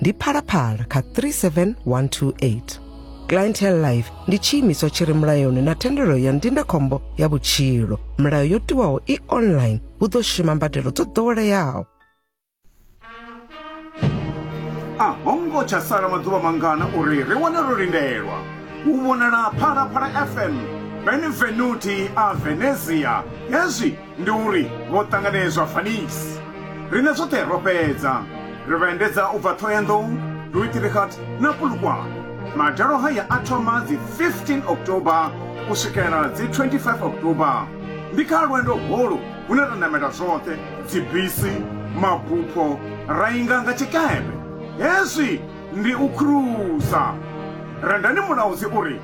ndi phalaphala kha 37128 clientele life ndi tshiimiswa tshi re mulayoni na thendelo ya ndindakhombo ya vhutshilo milayo yo tiwaho i online hu ḓo shuma mbadelo dzo ḓoweleaho a ho ngo tsha sala maḓuvha mangana uri ri wane ro lindelwa u vhonala phalaphala fm benvenuti a venezia hezwi Ndi uri vho ṱanganedzwa Phoenix. Riṋe zwoṱhe ro fhedza, ri vha endedza u bva Thohoyandou, Rooiterigat na Polokwane. Madalo haya a thoma dzi 15 October u swikela dzi 25 October. Ndi kha lwendo holu hune ra namela zwoṱhe, dzibisi, mabupho, ra inga nga tshikepe. Hezwi ndi u khurusa. Rendani Mulaudzi u ri.